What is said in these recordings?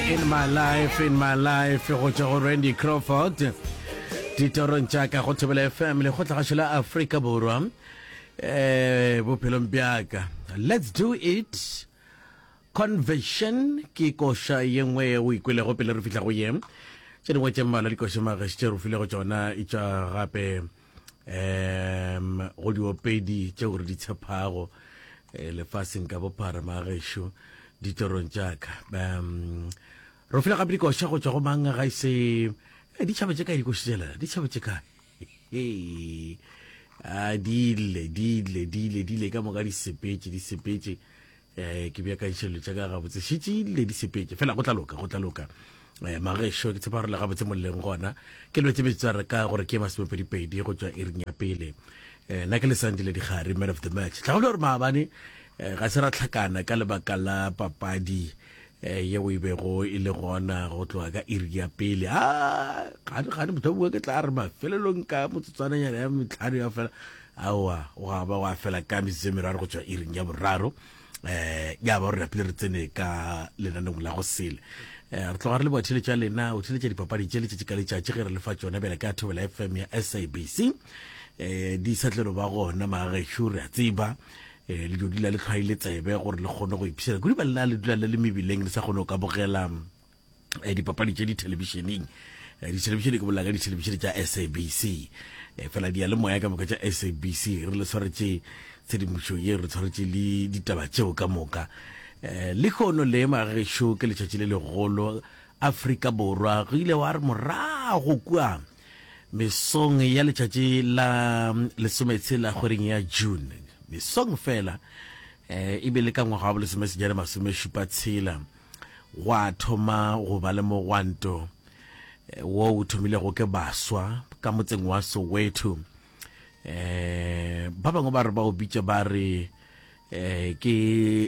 in my life in my life go tšwa go randy crawford ditorong tša ka go thobela fm le kgotlagašo la afrika borwa um bophelong bjaka let's do it conversion ke koša ye nngwe ye o ikwelego pele re fihla go ye tše dingwe tše mmalwa dikoša magaši tše re filego tšona e tšwa gape um go diopedi tšeo re di tshephago eh, lefaseng ka bophara magešo ditorong tšaka um ro fela gape dikoša go tšwa go mang ga ise eh, ditšhaba tše kae dikoši tšela ditšhaba tše kae a dile dile dile dile ka moka di sepetse di sepetse eh ke bja ka ditšhelelo tša ka gabotse šitše le di sepetse fela go tla loka go tla loka eh magešo ke tshepa gore le gabotse molleng gona ke lwetse betsware ka gore ke masomepedipedi go tswa iring ya pele eh na ke le sandile digare man of the match tla go gore maabane eh, ga se ra tlhakana ka lebaka la papadi eh ye o ibego e le gona go tloga ka iri ya pele a ah, ga ne motho bua ke tla re mafelelong ka motsotswananyana ya metlhano ya fela Aowa, gwa ba gwa fela ka metsotso e meraro go tšwa iring ya boraro, um ya ba gore napile re tsene ka lenanong la go sele. Um re tloga re le bothile tša lena o tliletša dipapadi tše letšatši ka letšatši ge re le fa tšona bjale ka thobela fm ya sabc um eh, di sa tlelo ba gona magagešu re a tseba um le dodila le tlhwaile tsebe gore le kgone go ipšhela kudu ba lena le dula le le mebileng le sa kgone go ka bogela eh, dipapadi tše dithelebišeneng eh, dithelebišene ke bolela ka dithelebišene tša sabc eh, fela di ya le moya ka moka tša sabc re le tshwaretše tshedimošo ye re tshwaretše le ditaba tšeo ka moka um le kgono le magešo ke letšatši le legolo afrika borwa go ile wa re morago kua mesong ya letšatši la mm, lesometshela kgweding ya june mesong fela um e be le ka ngwaga wa bolesomesejana masomešupa tshela Gwa thoma go ba le mogwanto wo o thomilego ke baswa ka motseng wa Soweto. Ba bangwe ba re ba o bitša ba re ke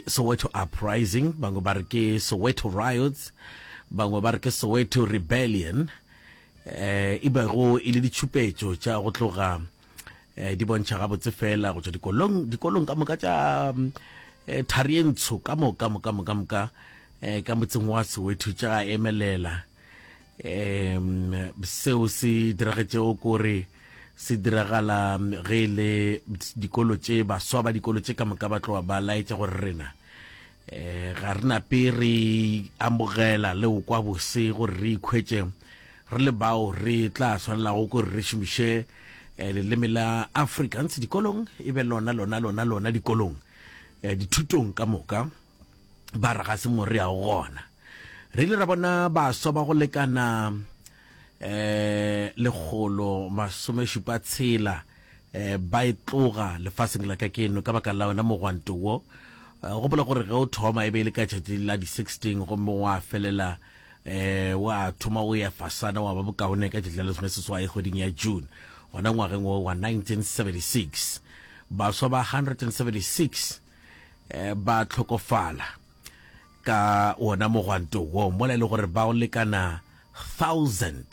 Soweto Uprising, bangwe ba re ke Soweto Riots, bangwe ba re ke Soweto Rebellion, e bego e le ditšhupetšo tša go tloga eh, di bontšha gabotse fela go tswa dikolong dikolong ka moka tša eh, thari e ntsho ka moka moka moka moka eh, ka motseng wa sewetho tša emelela um seo se diragetšego kore se diragala ge e le dikolo tše baswa ba dikolo tše ka moka ba tloga ba laetša gore rena e ga re nape re amogela le o kwa bose gore re ikhwetse re le bao re tla tshwanelago gore re šomiše eh, leleme la africans dikolong e be lona lona lona lona dikolong eh, dithutong ka moka ba re ga se mo re yago gona re ile ra bona baswa ba go lekana um lekgolo masome šupa tshela um ba e tloga lefaseng la ka keno ka baka la wena mogwanto wo um gopola gore ge o thoma e be e le ka tšatši la di-sixteen gomme wa felela um wa thoma o ya fasana wa ba bokaone ka tšatši la lesome seswai kgweding ya june gona ngwageng wo wa 1976 baswa ba 176 um ba tlhokofala ka wona mogwanto wo, mola e le gore bao lekana thousand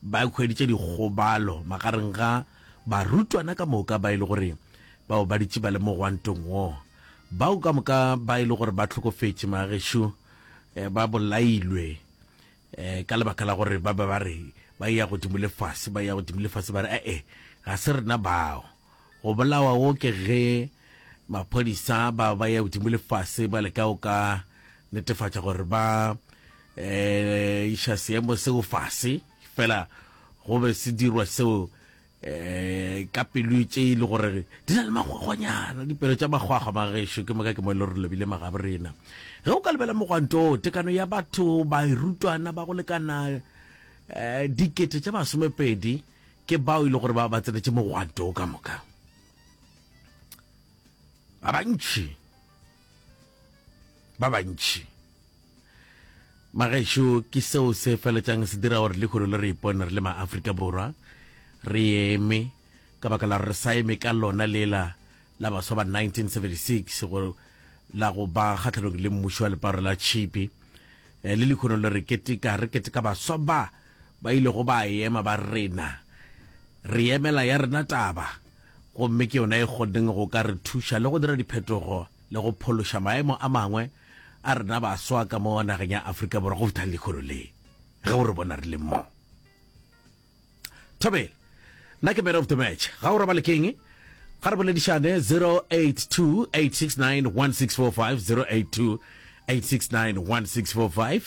ba hweditše dikgobalo magareng ga barutwana ka moka ba e le gore bao ba ditše ba le mogwantong wo. Bao ka moka ba e le gore ba hlokofetše magešo eh, ba bolailwe eh, ka lebaka la gore ba be ba re ba ya godimo le fase, ba ya godimo le fase, ba re ee, eh, eh, ga se rena bao. Go bolawa go ke ge maphodisa ba ba ya godimo le fase ba leka go ka netefatša gore ba iša seemo seo fase, fela go be se dirwa seo ka pelo tše e le gore di na le magwagwanyana, dipelo tša magwagwa magešo ke moka ke mo e le gore lebile magabo rena. Ge o ka lebela mogwanto o, tekano ya batho, bairutwana ba go lekana dikete tše masomepedi, ke bao e le gore ba ba tsenetse mogwanto o ka moka ba bantši ba bantši magešo ke seo se feletsang se dira gore lekgolo le re ipone re le maaforika borwa re eme ka baka la re sa eme ka lona lela la baswa ba 1976 go la go ba kgatlhanong le mmušo wa leparo la tšhipi eh, le lekgono le re keteka re keteka baswa ba Ba ilego ba ema ba rena, Re emela ya rena taba, gomme ke yona e kgonneng go ka re thuša le go dira diphetogo le go phološa maemo a mangwe a rena baswa ka mo nageng ya Afrika Borwa go feta lehono le, ge o re bona re le mo. Thobela. Nna ke man of the match. Ga o robale keng? Ga re boledišane 0828691645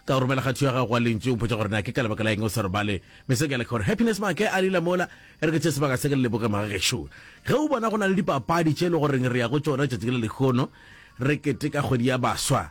ka o romela kgatho ya gago wa lentšu o mpotsa gore na ke ka lebaka la eng o sa robale me se ke le gore happiness make a lila mola e re ke tše sebaka se ke le leboge magagešo ge o bona go na le dipapadi tše e le goreng re ya go tšona tšatši le lekgono re keteka kgwedi ya baswa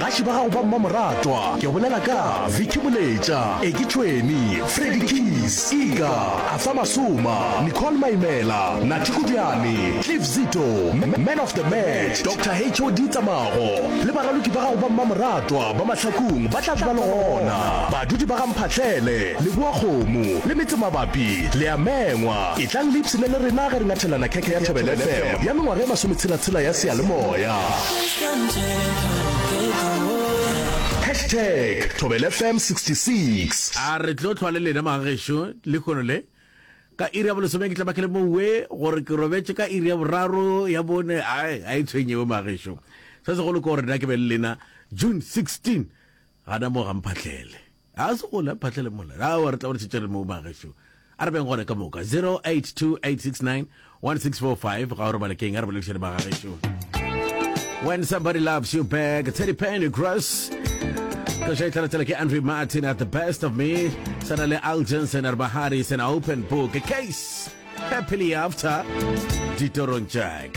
Gaši ba gago ba mmamoratwa ke bolela ka Vicky Moletša, Eki Tšhweni, Freddy Keys, Ika, Arthur Masoma, Nicole Maimela, Nathi Kodiane, Cliff Zito, Man of the Match, Doctor HOD Tsamago le baraloki ba gago ba mmamoratwa ba Mahlakung ba tla be ba le gona. Badudi ba ga Mphahlele, Leboa Kgomo le metse mabapi le a mengwa. Etlang le ipshine le rena ge re ngathelana khekhe ya Thobela FM ya mengwaga e masometshela-tshela ya seyalemoya. Hashtag ThobelFM 66. A re tlo tlhwa le lena mga gešo lekhono le. Ka iri ya bolesome ke tla ba ke le mowe gore ke robetše ka iri ya boraro ya bone ai ga e tshwenyewe mga gešo. Se segolo ke gore nna ke be le lena June 16 gana mo ga mphahlele. Ga se gona phatlha le mola. Awa re tla gore tšetšere mo ba gešo. A re beng gona ka moka 0828691645 ga o re bale keng a re balekišane ba ga gešo. When somebody loves you back, Teddy Penny Cross. Kasha itlala tsela ke Andre Martin at the best of me. Sana le Al Jensen are Bahari is an open book. A case happily after. Ditorong Jack.